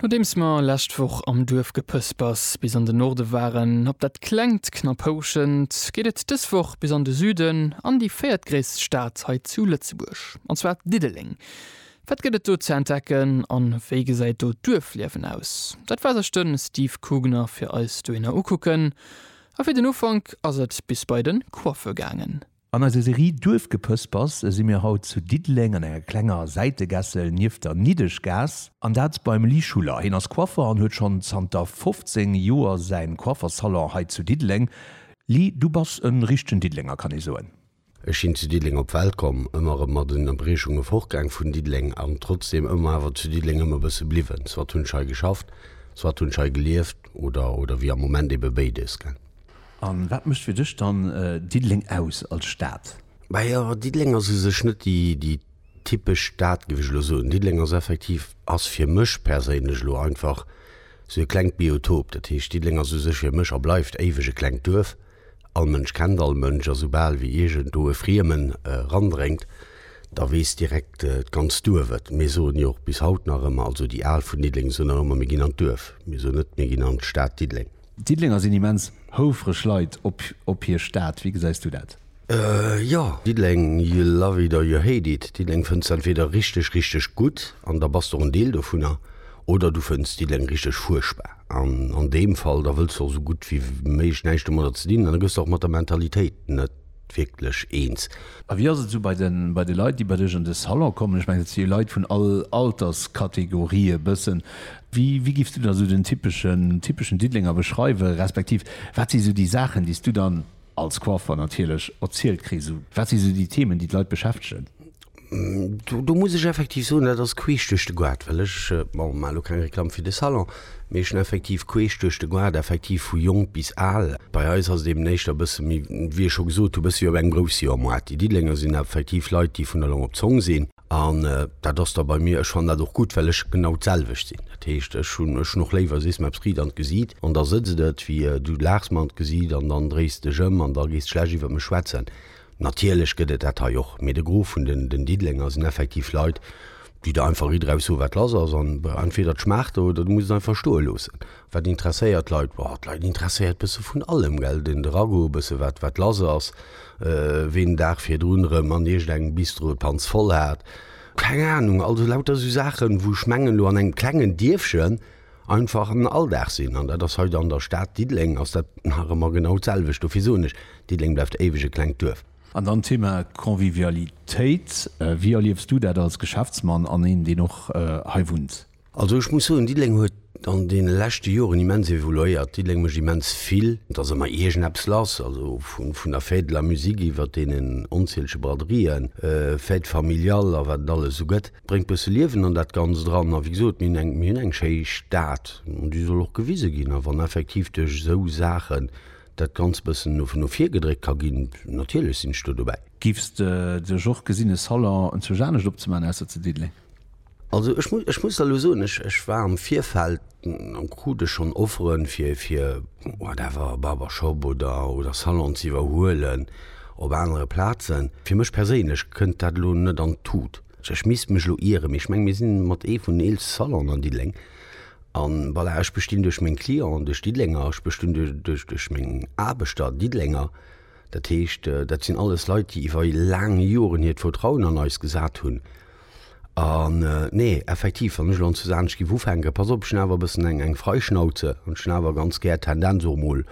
Nodeems mer lescht Woch am Duerf gepëspers bis an de Norde waren, op dat klengt Knapphouschent, geet et dës Woch bis an de Süden, an déi véiertgréisst Stad hei zu Lëtzebuerg, an zwar Diddeleng. Wat gëtt et do ze entdecken an wéi gesäit do d'Duerfliewen aus? Dat war sech de Steve Kugner fir eis dohinner ukucken. A fir den Ufank ass et bis bei de Coiffeur gaangen. An eiser Serie Duerfgepëspers si mir haut zu Diddeleng an enger klenger Säitegässel nieft der Niddeschgaass. An dat beim Lee Schuller. Hien ass Coiffer an huet schonn zanter 15 Joer säin Coifferssalon hei zu Diddeleng. Lee, du bass en richtegen Diddelenger, kann ee soen? Ech sinn zu Diddeleng op d'Welt komm, ëmmer erëm mat Ënnerbriechunge fortgaang vun Diddeleng an trotzdeem ëmmer awer zu Diddeleng ëm e bësse bliwwen. Soit hunn ech hei geschafft, soit hunn ech hei gelieft oder, oder wéi am Moment, ebe béides, gell? A wat mécht fir dech dann Diddeleng aus als Stad? Majo, Diddeleng ass u sech net déi typesch Stad, géif ech elo soen. Diddeleng ass effektiv, ass fir mech perséinlech elo einfach sou e klengt Biotop. Dat heescht, Diddeleng ass u sech fir mech a bleift éiweg e klengt Duerf. All Mënsch kennt all Mënsch a soubal wéi iergendwou e Friemen erandréngt, da weess direkt d'ganzt Duerf et. Mir soen jo och bis haut nach ëmmer, also déi Al vun Diddeleng soen nach ëmmer, mir ginn an d'Duerf. Mir soen net, mir ginn an d'Stad Diddeleng. D'Diddelenger sinn immens houfreg Leit op hir Stad. Wéi gesäis du dat? Jo, Diddeleng, you love it or you hate it. Diddeleng fënns de entweeder richteg, richteg gutt, an da bass de och en Deel dovunner, oder du fënns Diddeleng richteg fuerchtbar. An an deem Fall, da wëlls de och esou gutt wéi méiglech näischt domadder ze dinn, an da gëss de och mat der Mentalitéit net. wierklech eens. A wéi ass et esou bei de Leit, déi bei dech an de Salon kommen? Ech mengen, et si jo Leit vun all Alterskategorie e bëssen. Wéi giffs du dann esou den typeschen Diddelenger beschreiwen, respektiv wat si esou déi Saachen, déi s du dann als Coiffeur natierlech erzielt kriss? Wat si esou déi Themen, déi d'Leit beschäftegen? Do muss ech effektiv soen, dat ass queesch duerch de Goart, well ech maachen elo keng Reklamm fir de Salon, mee ech hunn effektiv queesch duerch de Goart effektiv vu jonk bis al. Bei eis ass et eben éischter e bësse méi, wéi ech scho gesot hunn, e bësse wéi op engem Groussjahrmoart. Déi Diddelenger sinn effektiv Leit, déi vun der Long op d'Zong sinn. An dat ass da bei mir, ech fannen dat och gutt, well ech genau d'selwecht sinn. Dat heescht, ech hunn ech hunn och léiwer, sees mer eppes riit an d'Gesiit an da sëtzt et, wéi du laachs mer an d'Gesiit an dann dréis dech ëm an da gees de schlecht iwwer mech schwätzen. Natierlech gëtt et dat hei och, mee de Gros vun den Diddelenger sinn effektiv Leit, déi der einfach ridderhaus soen, wat lass ass. An entweder et schmaacht der oder du muss et einfach stoe loossen. Wat interesséiert d'Leit? Boah, d'Leit interesséiert e bësse vun allem, gell. Den de Ragout, e bësse wat, wat lass ass, ween den Dag virdrun erëm an iergendengem Bistro d'Panz voll hat, keng Anung. Also lauter esou Saachen, wou ech mengen, elo an engem klengen Dierfchen, einfach en Alldag sinn. An dat ass hei an der Stad Diddeleng ass dat nach ëmmer genau d'selwecht. Dofir soen ech, Diddeleng bleift éiweg e klengt Duerf. An dann d'Thema Convivialitéit. Wéi erliefs du dat als Geschäftsmann an een, deen och hei wunnt? Also ech muss soen, Diddeleng huet an deene leschte Joren immens evoluéiert. Diddeleng mécht immens vill. Et ass ëmmer iergendeppes lass, also vun der Fête de la musique iwwert deenen onzielege Braderien, Fêtes familiales a wat et alles esou gëtt. bréngt bësse Liewen an dat Ganzt eran. A wéi gesot, mir hunn eng schéi Stad an déi soll och gewise ginn. A wann effektiv duerch esou Saachen dat Ganzt bëssen no vir gedréckt ka ginn, natierlech sinn ech do dobäi. Giffs de sech och gesinn e Salon zwousch anescht opzemaachen ausser zu Diddeleng? Also ech muss ech muss der elo soen, ech war am Virfeld an krut ech schonn Offeren fir fir whatever, Barbershop oder oder Salon ze iwwerhuelen op anere Plazen. Fir mech perséinlech kënnt dat elo net an d'Tut. Ech misst mech elo ieren, mee ech meng mir sinn mat ee vun den eelste Salonen an Diddeleng. An voilà, ech bestinn duerch meng Clienten, duerch Diddelenger, ech bestinn duerch duerch meng Aarbechter, Diddelenger. Dat heescht, dat sinn alles Leit, déi iwwer laang Joren hiert Vertrauen an eis gesat hunn. An, nee, effektiv, wann ech elo an Suze Hanesch géif ufänken, pass op, ech hunn awer e bëssen eng, eng Freischnauze an ech hunn awer ganz gär d'Tendenz och emol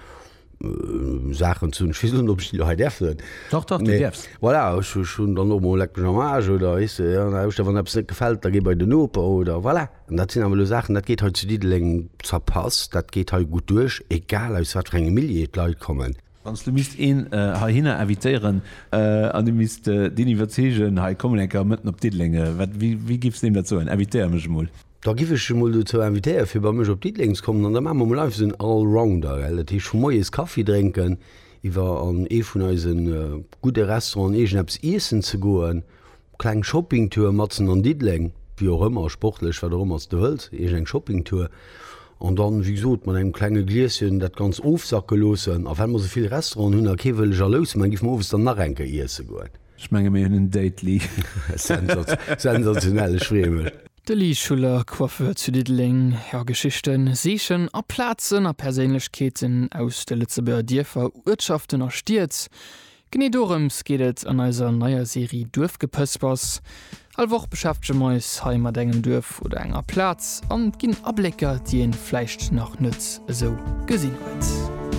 Saachen ze hunn, ech weess net, ob ech déi elo hei däerf soen. Dach, dach, déi däerfs. Voilà, ech, ech hunn dann och emol Leck mech am Aarsch oder, weess de, an der Hauschter, wann eppes net gefält, da géi bei den Noper oder, voilà. An dat sinn awer elo Saachen, dat geet hei zu Diddeleng zerpasst, dat geet hei gutt duerch, egal aus wat fir engem Milieu d'Leit kommen. Wann s du misst een heihinner invitéieren an du misst deen iwwerzeegen, hei kommen eng Kéier mëtten op Diddeleng, wéi giff s deem dat soen, invitéier mech emol? Da giff ech e mol dozou invitéiere fir bei mech op Diddeleng ze kommen an da maache mer emol einfach esou en Allrounder, gell. Dat heescht vu moies Kaffi drénken, iwwer an ee vun eise gudde Restauranten iergendeppes iessen ze goen, Kleng Shoppingtour matzen an Diddeleng, wéi och ëmmer, sportlech, wat och ëmmer s de wëlls, iergend eng Shoppingtour. An dann, wéi gesot, mat engem klenge Glieschen dat Ganzt ofsacke loossen. A well mer esou vill Restauranten hunn a kee wëll jalous man, géife mer owes dann nach eng Kéier iesse goen. Ech menge mir hunn en Date-Li. Sensationell, ech freeë mech. De Lee Schuller, Coiffeur zu Diddeleng, Ja, Geschichten, Siichen a Plazen a Perséinlechkeeten aus de Lëtzebuerger Dierfer, Uertschaften a Stied, Genee dorëms geet et an eiser neier Serie Duerfgepëspers. All Woch beschäftege mer eis hei mat engem Duerf oder enger Plaz an ginn Ablécker, déi een vläicht nach net esou gesinn huet.